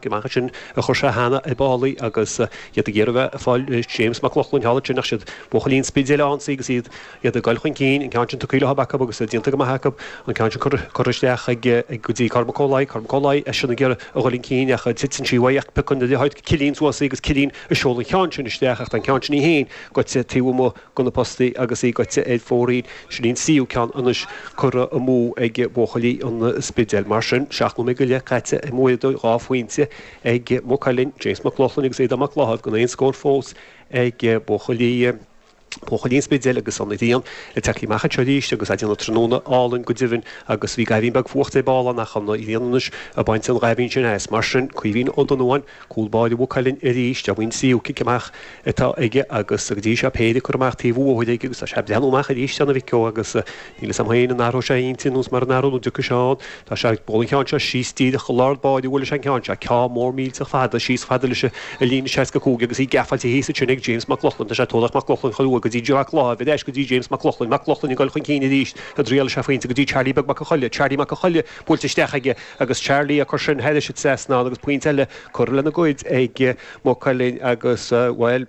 Chomh maith leis sin a chuir sé cheana ag báillí agus iad ag iarraidh bheith ag fáil James Mac Lochlainn thall ansin ach siad Buachaillí an Spidéil ag ionsaí agus iad ag goil chun cinn, an ceann sin tugtha leo acu agus déanta go maith acu, an ceann sin curtha isteach ag go dtí Cormac Ó Laoi, Cormac Ó Laoi eisean ag iarraidh a dhul chun cinn ach titeann sí uaidh ach piocann Cillín suas í agus Cillín ag seoladh an ceann sin isteach ach tá an ceann sin í féin goite taobh amuigh gona postaí agus í goite ar fóraoil. Sin í an tríú ceann anois curtha amú ag buachaillí an Spidéil. Mar sin, seacht nóiméad go leith caite i mBaile Dóite, dhá phointe ag Maigh Cuilinn, James Mac Lochlainn agus Aodán Mac Laithimh, gan aon scór fós ag buachaillí an Spidéil agus an ghrian ag tíocht amach anseo arís agus ag déanamh tráthnóna álainn go deimhin agus bhí goimhín beag fuachta ar ball ann ach an ghrian anois ag baint an ghoimhín sin as. Mar sin, Caoimhín Ó Donnabháin. Cúl báire Mhaigh Cuilinn arís, ab in an séú cic amach atá aige agus go dtí seo péire acu curtha amach taobh an bhóthair aige agus tá sé ag breathnú amach arís ar an mhic ó agus níl 'fhios a'm féin an athróidh sé intinn nó is mar an athrú nó dtiocfaidh sé ann. Tá sé ag dul an ceann seo síos díreach go lár báire bhuail sé an ceann seo, ceann mór millteach fada, síos fada leis an líne 65 agus í geafáilte thíos ansin ag James Mac Lochlainn, tá sé ag tabharthach Mac Lochlainn chun uaidh go dtí Mac Laithimh ar ais go dtí James Mac Lochlainn, Mac Lochlainn ag dul chun cinn arís, a' dtriail is ea phointe go dtí Charlie Beag Mac a' Choiligh, Charlie Mac a' Choiligh. buailte isteach aige agus Charlie ag cur sin thairis an trasnán agus pointe eile curtha lena gcuid ag Maigh Cuilinn agus, bhuel,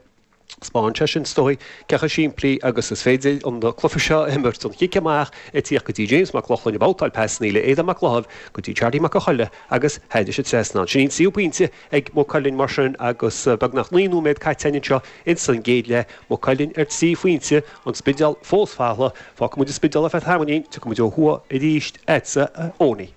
spáin sé sin, is dóigh, cé chomh simplí agus is féidir an cluiche seo a imirt, an chic amach ag tíocht go dtí James Mac Lochlainn, ag babhtáil pasanna le Aodán Mac Laithimh go dtí Charlie Mac a' Choiligh agus thairis an trasnán. Sin í an tríú pointe ag Maigh Cuilinn mar sin agus beagnach naoi nóiméad caite anseo ins an gcéad leath, Maigh Cuilinn ar trí phointe, An Spidéal fós folamh. Fágfaidh muid an Spidéal ar feadh tamaillín, tiocfaidh muid ó thuaidh arís agatsa a Ownie.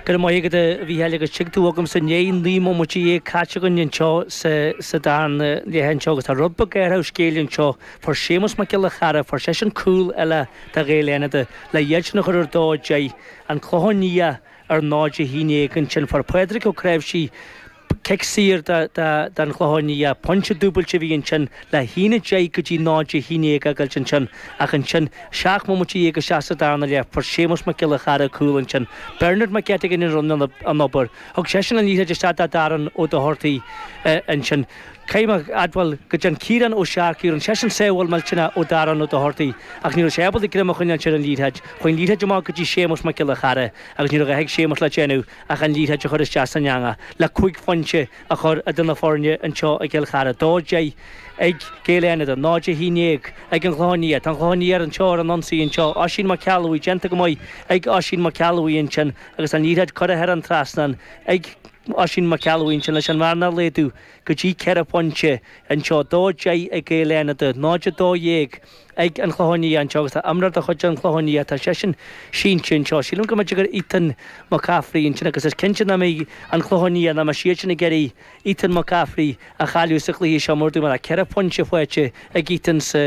Go raibh maith agat a Mhícheáil agus tig tú chugamsa i ndiaidh naoi mbomaite dhéag caite againn anseo sa darna leath anseo agus tá athrú beag ar an scéal anseo, fuair Séamus Mac Giolla Chearra, fuair seisean cúl eile do Ghaeil Fhánada le hiadsan a chur ar dó a deich, An Clochán Liath. ar náid a haon déag ansin fuair Pádraig Ó Creabhsí cic saor don Chlochán Liath. Pointe dúbailte a bhí ansin le haon a deich go dtí náid a haon déag a fhágáilt ansin ach ansin seacht mbomaite dhéag isteach sa darna leath fuair Séamus Mac Giolla Chearra cúl ansin. Bernard Mac Eiteagáin a rinne an obair. Thug seisean an liathroid isteach do Darren Ó Dochartaigh ansin. Caithfidh mé a admháil go dtearn Ciarán Ó Searcaigh rinne seisean sábháil millteanach ó Darren Ó Dochartaigh ach ní raibh sé ábalta greim a choinneáilt ar an liathróid. Chuaigh an liathróid amach go dtí Séamus Mac Giolla Chearra agus ní raibh a dhath ag Séamus le déanamh ach an liathróid a chur isteach san eangach le cúig phointe a chur idir na foirne anseo i gCill Chartha. 2 10 ag Gaeil Fhánada, 0 11 ag An Chlochán Liath. Tá An Clochán Liath anseo ar an ionsaí anseo. Oisín Mac Ceallabhuí déanta go maith ag Oisín Mac Ceallabhuí ansin agus an liathróid curtha thar an trasnán ag Oisín Mac Ceallabhuí ansin leis an bhearna a laghadú. go dtí ceithre phointe anseo, 2-10 ag Gaeil Fhánada, 0-12 ag An Clochán Liath anseo agus tá imreoir de chuid an Chlocháin Liath, tá seisean sínte anseo. Sílim go mb'fhéidir gur Ethan McCaffrey é ansin agus is cinnte ná beidh An Clochán Liath ná mbeidh siadsin ag iarraidh Ethan McCaffrey a chailleadh sa gcluiche seo mar dúirt mé tá ceithre phointe faighte ag Ethan sa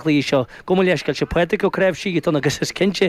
gcluiche seo. Gabh mo leithscéal, sé pointe go dtí seo ag Ethan agus is cinnte